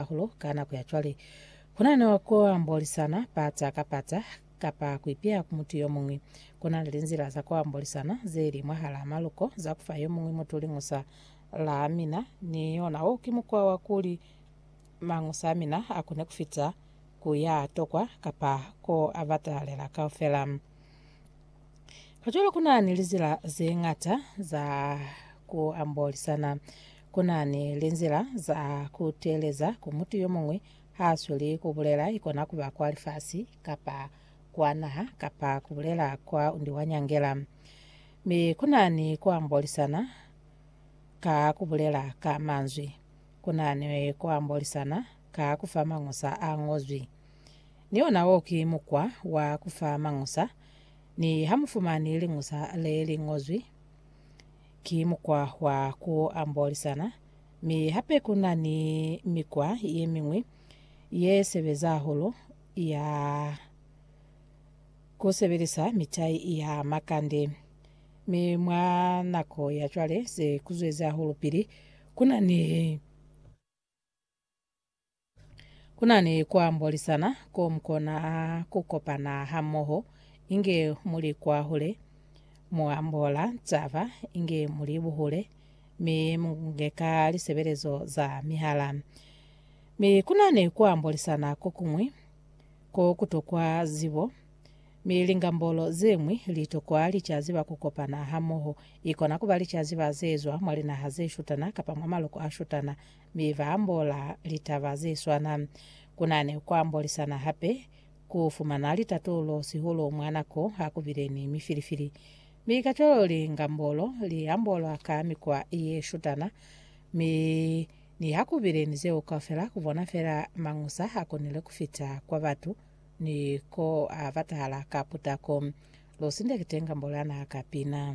hahulu ka nako ya cwale. Ku na ni ku ambolisana pata ka pata kapa ku ipiha ku mutu yo muñwi. Ku na ni linzila za ku ambolisana ze li mwahalaa maluko za ku fa yo muñwi mutu liñusa la mina, ni yona wo ki mukwa wa kuli mañusa a mina a kone ku fita ku ya tokwa kapa ko a batahalela kaufela. Kacwalo ku na ni lizila ze ñata za ku ambolisana. Ku na ni linzila za ku teeleza ku mutu yo muñwi ha a sweli ku bulela, ikona ku ba kwa lifasi, kapa kwa naha, kapa ku bulela kwa undi wa nyangela. Mi ku na ni ku ambolisana ka ku bulela ka manzwi. Ku na ni ku ambolisana ka ku fa mañusa a ñozwi. Ni ona wo ki mukwa wa ku fa mañusa. Ni ha mu fumani liñusa le li ñozwi, Ki mukwa wa ku ambolisana, mi hape ku na ni mikwa ye miñwi ye sebeza hahulu ya ku sebelisa mitai ya makande. Mi mwa nako ya cwale, se ku zwezi hahulu pili ku na ni. Ku na ni ku ambolisana ko mu kona ku kopana hamoho inge mu li kwahule, mu ambola taba inge mu li buhule, mi mu nyeka lisebelezo za mihala. Mi ku na ni ku ambolisana ko kuñwi ko ku tokwa zibo, mi lingambolo ze ñwi li tokwa licazi ba ku kopana hamoho. I kona ku ba licazi ba ze zwa mwa linaha ze shutana kapa mwa maloko a shutana. Mi ba ambola litaba ze swana. Ku na ni ku ambolisana hape ku fumana litatulo sihulu mwa nako ha ku bile ni mifilifili. Mi kacwalo lingambolo li ambolwa ka mikwa ye shutana, mi niha ku bile ni zeo kaufela, ku bona fela mañusa a konile ku fita kwa batu ni ko a batahala ka putako. Lu sindekite ngambolo ya naha ka pina.